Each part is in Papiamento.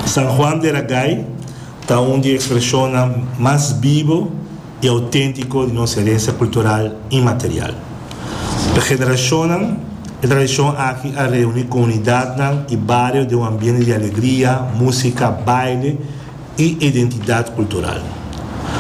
San Juan de la Gay ta un di ekspreshonnan mas bibo i outéntiko di nos herensia kultural inmaterial. Pa generashonnan, e tradishon aki a reuní komunidatnan i bario den un ambiente di alegria, músika, baile, i identidat kultural.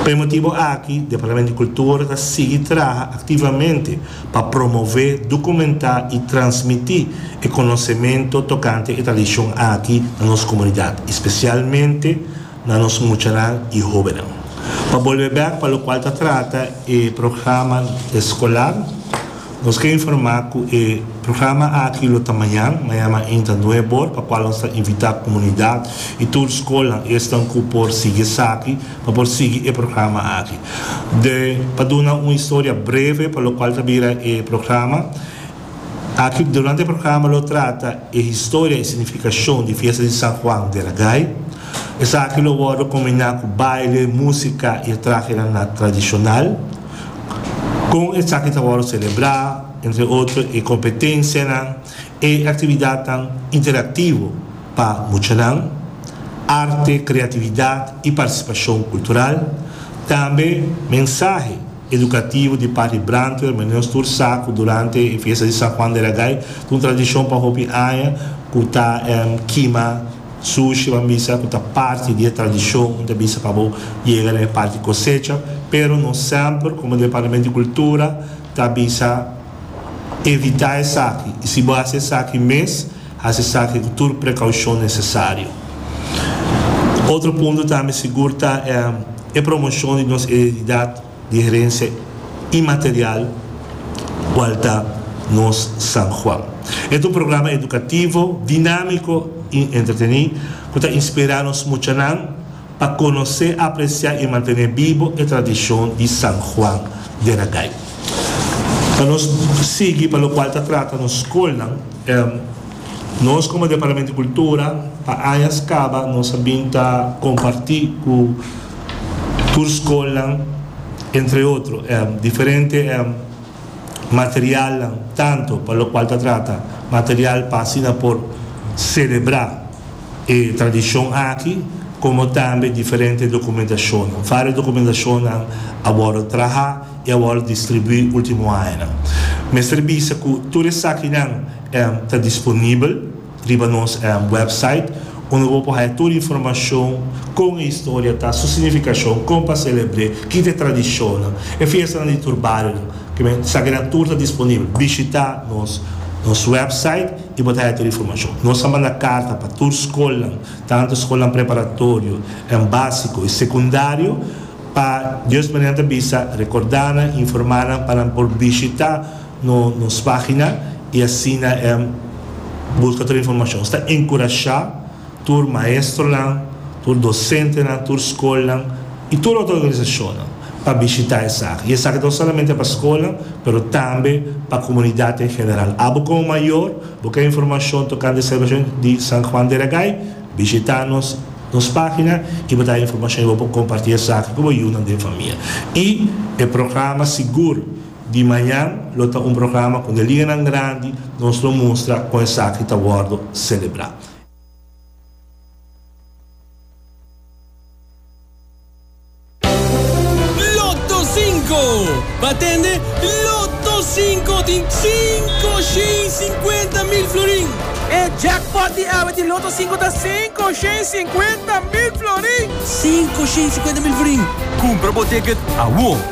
Pa e motibu aki Departamento di Kultura ta sigui traha aktivamente pa promové, dukumentá i transmití e konosementu tokante e tradishon aki na nos komunidat, espesialmente na nos muchanan i hóbennan. Pa bolbe bèk pa lokual ta trata e programa eskolar. Nos ke informá ku e programa aki lo ta mañan, mañana inta nue bor, pa kua nos ta invitá komunidat i tur skolnan esnan ku por sigui esaki, pa por sigui e programa aki. De pa duna un historia breve pa lokual ta bira e programa aki, durante e programa lo trata e historia i signifikashon di fiesta di San Juan de Ragay. Esaki lo wòrdu kombiná ku baile, músika i e trahenan tradishonal. Kon esaki ta wòrdu selebrá? Entre otro e kompetensianan, e aktividatnan interaktivo pa muchanan, arte, kreatividat i partisipashon kultural. Tambe mensahe edukativo di Patri Brantwer Meneer Stoer sa ku durante e fiesta di San Juan de Ragay ta un tradishon pa hopi aña ku ta kima Sushi ban bisa cu ta parti di e tradicion un ta bisa pa bo yega na e parti cosecha, pero nos semper como Departamento di Cultura ta bisa evita esaki y si bo haci esaki mes haci esaki cu tur precaucion necesario. Otro punto tambe sigur ta e promocion di nos identidad. di herensia inmaterial cual ta nos San Juan. E ta un programa educativo, dinamico y entreteni cu ta inspira nos muchanan pa conoce, aprecia y mantene bibo e tradicion di San Juan den Agay. Pa nos sigui pa locual ta trata nos scolnan. Nos como Departamento di Cultura pa añas caba nos a bin ta comparti cu tur scolnan entre otro diferente materialnan tanto pa locual ta trata material pa asina por celebra e tradicion aki como tambe diferente documentacionnan. Vario documentacionnan a wordo traha y a wordo distribui ultimo añanan. Mester bisa cu tur esakinan. ta disponibel riba nos website unda bo por haya tur informashon, kon e historia ta, su signifikashon, kon pa selebr'é, kiko ta e tradishonnan, e fiestanan di tur barionan, esakinan tur ta disponibel. Bishitá nos website i bo ta haya tur informashon. Nos a manda karta pa tur skolnan, tantu skolnan preparatorio, básiko i sekundario, pa dios manera nan ta bisa rekordá nan, informá nan pa nan por bishitá. no nos pagina y asina e busca tur informacion. Nos ta encurasha tur maestronan, tur docentenan, tur scolnan y tur otro organisacionnan pa bishita esaki. Y esaki ta bai solamente pa scolnan pero tambe pa comunidad en general. Abo como mayor bo kende informacion tocante Celebracion di San Juan de Ragay, bishita nos nos pagina y bo ta haya informacion y bo por comparti esaki cu bo yiunan den famia. Y e programa sigur. Di mañan lo ta un programa ku den liganan grandi nos lo mustra kon esaki ta wòrdu selebrá. Lotto Cinco, pa tende Lotto Cinco tin cinco shen cincuenta mil florin. E jackpot di awe di Lotto Cinco ta cinco shen cincuenta mil florin. Cinco shen cincuenta mil florin. Kumpra bo ticket awor!